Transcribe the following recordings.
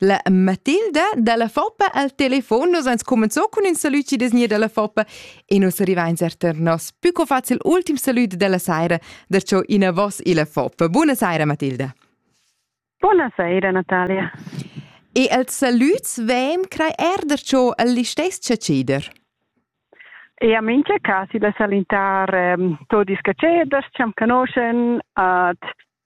La Matilda dalla Foppa al telefon. Nus ans cumenzò cun ün salüd chi desgna dalla Foppa e nus arrivains er tar nos pü co facil ultim salüd della saira, perciò in a vos illa Foppa. Buna saira Matilda. Buona saira Natalia. E als salüds veem crai er perciò al listess ceder. E a mincha cas illa salintar ehm, todi scaceders, ciam canoscen, ad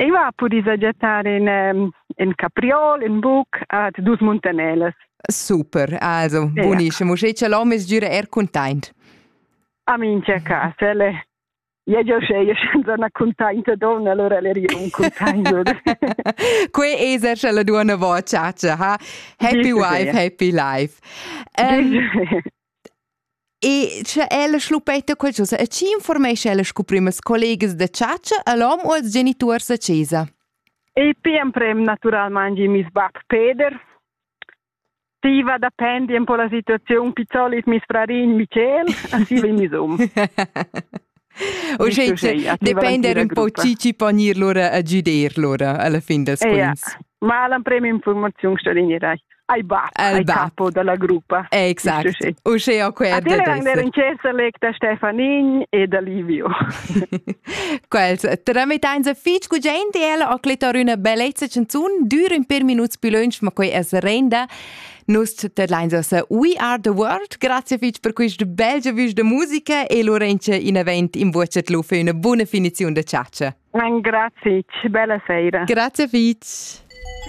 Ei va a pudì sajettar in, in capriol, in buc, at dus muntanelas. Super, also, buonissimo. Mo sche l'hom es gira er content. A min c'è casa, le. Ja jo sceie senza una contenta donna, allora le rio un contento. Quei es er sche la duonna vo a ciacia, ha? Happy wife, happy life. Um, E sche ella schluppetta qualchosa e chi informescha ella scu primas collegas da chatscha a l'hom u als genituors da chesa? Il pi emprem natüralmaing i meis bap Peder. Tiva dapendi un po la situaziun, pizzolit meis frarin Michel, a siva in mis um. Depender un po chi chi pon ir lura a giuder lura alla fin dels quints. Ma l'emprema informaziun sta vegnida ai bab, ai capo dalla gruppa. Exact. Usce ho quel da ader in cer select da Stefanin e da Livio. Quels trametain se fitch cu gente e ella ho clettar üna bellezza chanzun düra in per minuts più lunch, ma quei es renda Nus tedlein sa We Are the World. Grazie fitg per questa belgia vusch de musica e Lorenza in event in vocet lu für una buona finizione de ciaccia. Grazie, bella sera. Grazie fitg.